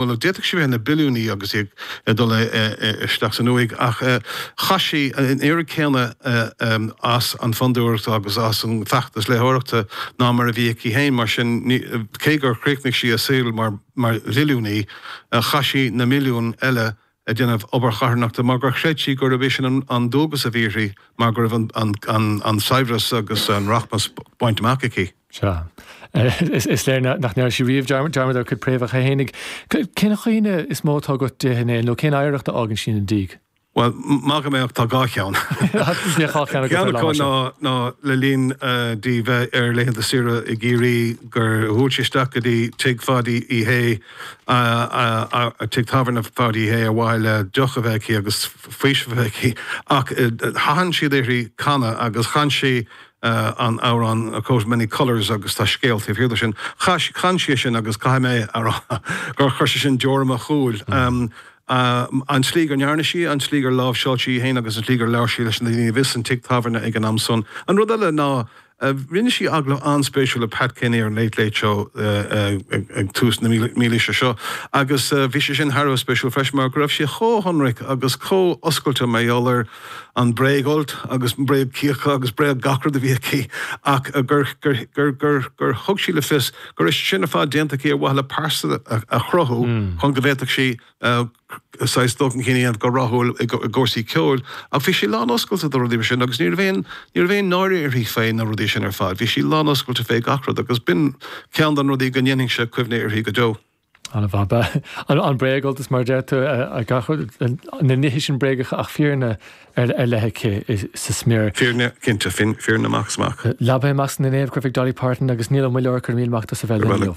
Bhuel, d'fhéadfadh sí bheith ina billiúnaí agus í ag dul isteach san uaigh, ach chaith sí an oiread céanna as an bhFondúireacht agus as an bhfeachtas léitheoireachta ná mar a bhí aici féin. Mar sin, cé gur chríochnaigh sí a saol mar mhilliúnaí, chaith sí na milliúin eile ag déanamh obair charthanachta mar gur chreid sí gurb é sin an dualgas a bhí uirthi mar go raibh an saibhreas agus an rachmas bainte amach aici. Sea. Is léir nach ndearna sí riamh dearmad ar a cuid préamhacha fhéinig. Cén chuimhne is mó atá agat di féin nó cén oidhreacht a fhágann sí ina diaidh? Bhuel, maidir liomsa, tá dhá cheann. Ceann acu ná le linn di bheith ar laethanta saoire i gCiarraí gur bhuail sí isteach go dtí tigh Pháidí Uí Shé, tigh tábhairne Pháidí Uí Shé ar mhaithe le deoch a bheith aici agus faoiseamh a bheith aici ach thathain siad uirthi canadh agus chan sí an amhrán A Coat of Many Colours agus tá scéal taobh thiar de sin. Chan sí é sin agus caithfidh mé a rá gur chuir sé sin deoir i mo shúil, an tslí gur ndearna sí, an tslí gur láimhseáil sí í féin agus an tslí gur labhair sí leis na daoine a bhí san tigh tábhairne ag an am san. An rud eile ná. Rinne sí agallamh an-spéisiúil le Pat Kenny ar an Late Late Show ag tús na mílaoise seo agus bhí sé sin thar a bheith spéisiúil freisin mar go raibh sí chomh hionraic agus chomh oscailte mar gheall ar an bréagfholt agus an bréagchíocha agus bréag gach rud a bhí aici ach gur thug sí le fios go raibh sin ar fad déanta aici ar mhaithe le pearsa a chruthú chun go bhféadfadh sí saghas dul chun cinn a dhéanamh go rathúil i gcúrsaí ceoil ach bhí sí lán-oscailte fé rudaí mar sin agus ní raibh aon, ní raibh aon náire uirthi fé na rudaí sin ar fad, bhí sí lán-oscailte fé gach rud agus b'in ceann de na rudaí go ndéanfainnse cuimhne uirthi go deo. An-mhaith. An bréagfholt mar a deir tú, na nithe sin bréagacha ach fírinne ar leith aici sa smior. Fírinne, cinnte, fírinne amach is amach. Labhair mé amach sna Naomh Chrafaigh Dolly Parton agus níl an Muilleoir ag cur míl amach do sa bhfeile inniu.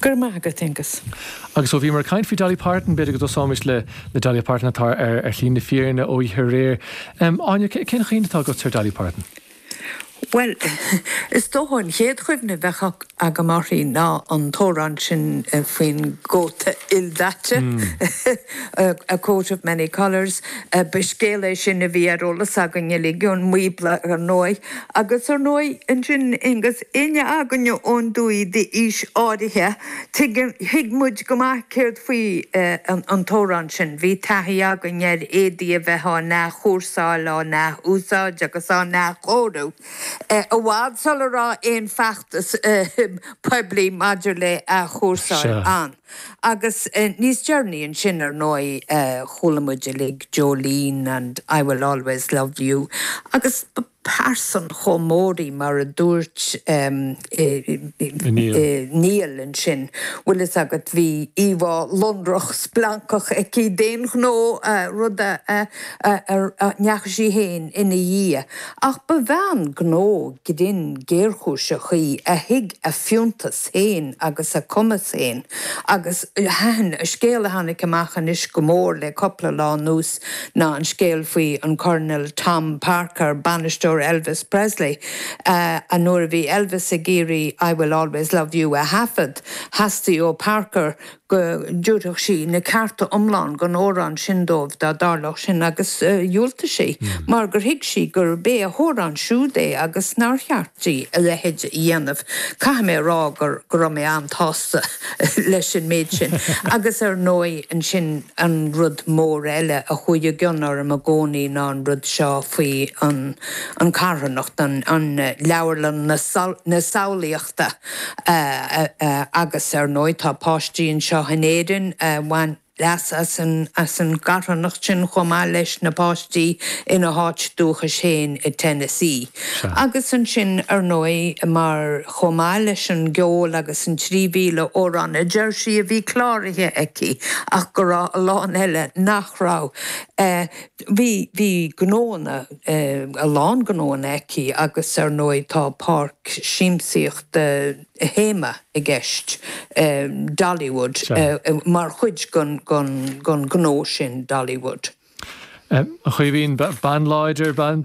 Go raibh maith agat, Aengus. Agus ó bhíomar ag caint faoi Dolly Parton, b'fhéidir go dtosóimis le Dolly Parton atá ar shlí na fírinne ó oíche aréir. Áine, cén chuimhne atá agatsa ar Dolly Parton? Bhuel, is dócha an chéad chuimhne a bheadh agam uirthi ná an t-amhrán sin faoin gcóta ildaite, A Coat of Many Colours. Ba scéal é sin a bhí ar eolas againn uilig ón mBíobla, ar ndóigh. Agus ar ndóigh, ansin, agus éinne againne ón dtuaith d'aois áirithe, tuigeann, thuig muid go maith céard faoi an t-amhrán sin. Bhí taithí againn ar éadaí a bheith á n-athchúrsáil, á n-ath-úsáid agus á n-athchóiriú, i bhfad sula raibh aon feachtas poiblí maidir le athchúrsáil ann. Agus níos deireanaí ansin, ar ndóigh, chuala muid uilig Jolene and I Will Always Love You agus ba pearsa chomh mór í mar a dúirt Niall ansin, bhfuil fhios agat, bhí íomhá lonrach, splancach aici d'aon ghnó, rud a ndeachaigh sí féin ina dhiaidh. Ach ba bhean gnó grinn géarchúiseach í a thuig a fiúntas. féin agus a cumas féin agus thaitin an scéal a tháinig amach anois go mór le cúpla lá anuas ná an scéal faoi an Colonel Tom Parker, bainisteoir Elvis Presley. Nuair a bhí Elvis ag iarraidh I Will Always Love You a thaifead, theastaigh ó Parker go dtabharfadh sí na cearta iomlán don amhrán sin dóibh dá dtarlódh sin agus dhiúltaigh sí, mar gur thuig sí gurb é a hamhrán siúd é agus nár cheart di a leithéid a dhéanamh. Caithfidh mé a rá gur go raibh mé an-tsásta leis an méid sin agus ar ndóigh ansin an rud mór eile a chuaigh i gcion orm i gcónaí ná an rud seo faoi an carthanacht, an leabharlann na samhlaíochta. agus ar ndóigh tá páistí anseo in Éirinn a bhain leas as an gcarthanacht sin chomh maith leis na páistí ina háit dúchais féin i Tennessee. Agus ansin ar ndóigh mar chomh maith leis an gceol agus an 3,000 amhrán a deir sí a bhí cláraithe aici ach go raibh a lán eile nach raibh. Bhí, bhí gnóanna, a lán gnóanna aici agus ar ndóigh tá páirc siamsaíochta théama i gceist, Dollywood, mar chuid den ghnó sin, Dollywood. A Chaoimhín, bean láidir, bean.